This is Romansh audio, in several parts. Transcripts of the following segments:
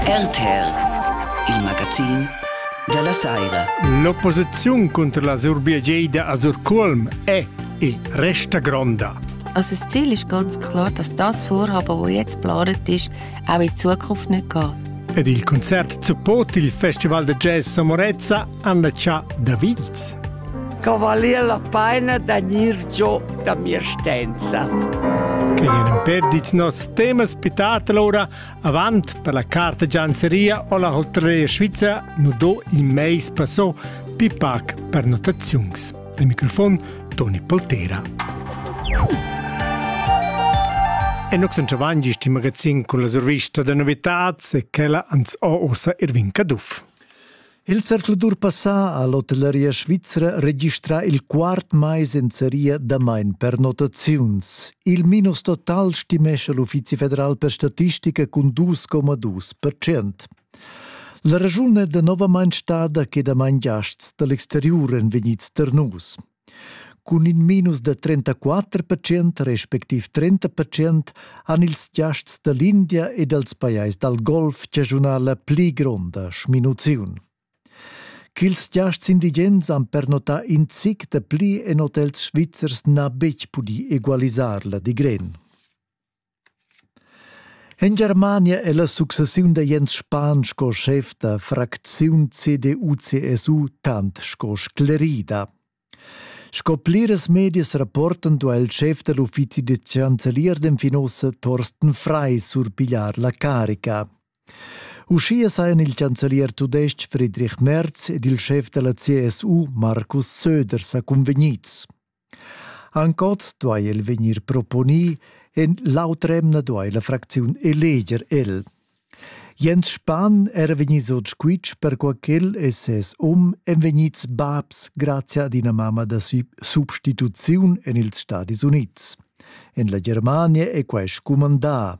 RTR, il magazin dalla Saira. L'opposiziun contro la Surbiageida a Surculm è e resta gronda. Also das Ziel ist ganz klar, dass das Vorhaben, das jetzt geplant ist, auch in Zukunft nicht gehen. Ed il concert support il Festival de Jazz Samorezza Anna cha Davids. Cavalier la paina da gnir giò da mia stenza. Che gnan imperdits nos temas pitatela ora avant per la carta gianzeria o la hotelleria svizza nu do in meis passò pipac per notaziuns. Il microfon Toni Poltera. E noi siamo avanti in magazin con la survista di novità e quella ans ho ossa Irvin Caduff. Il zercladur passà ha l'hotelleria svizra registrà il quart mais en seria damain pernottaziuns. Il minus total stimescha l'Uffizi federal per statistica cun 2,2 percent. La raschun è danovamain stada che damain giasts da l'exteriur èn vegnids ternus. Cun in minus da trentaquatter percent respectiv trenta percent han ils giasts da l'India e dals pajais dal golf chaschunà la pli gronda sminuziun. Ch'ils giasts indigens han pernotà in zic da pli en hotels svizzers n'ha betg pudì egualisar la digren. En Germania è la successiun da Jens Spahn sco schef da fracziun CDU-CSU tant sco sclerida. Sco pliras medias rapportan duai il schef da l'uffizi da chancelier den Finossa Thorsten Frei surpigliar la carica. Uschia sajan il chancelier tudestg Friedrich Merz ed il schef da la CSU Markus Söder sa convegnids. Anc oz duai el vegnir proponì, en l'autr'emna duai la fracziun eleger el. Jens Spahn era vegnids oz squitsch perquai ch'el e ses um èn vegnids babs grazia ad ina mamma da substituziun en ils Stadis Unids. En la Germania è quai scumandà.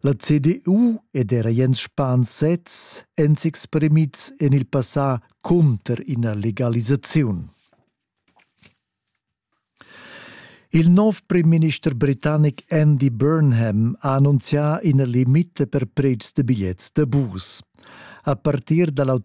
La CDU ed era Jens Spahn sez èn s'exprimids en il passà cunter ina legalisaziun. Il nov primminister britannic Andy Burnham ha annunzià ina limita per pretschs da bigliets da bus. A partir da l'auter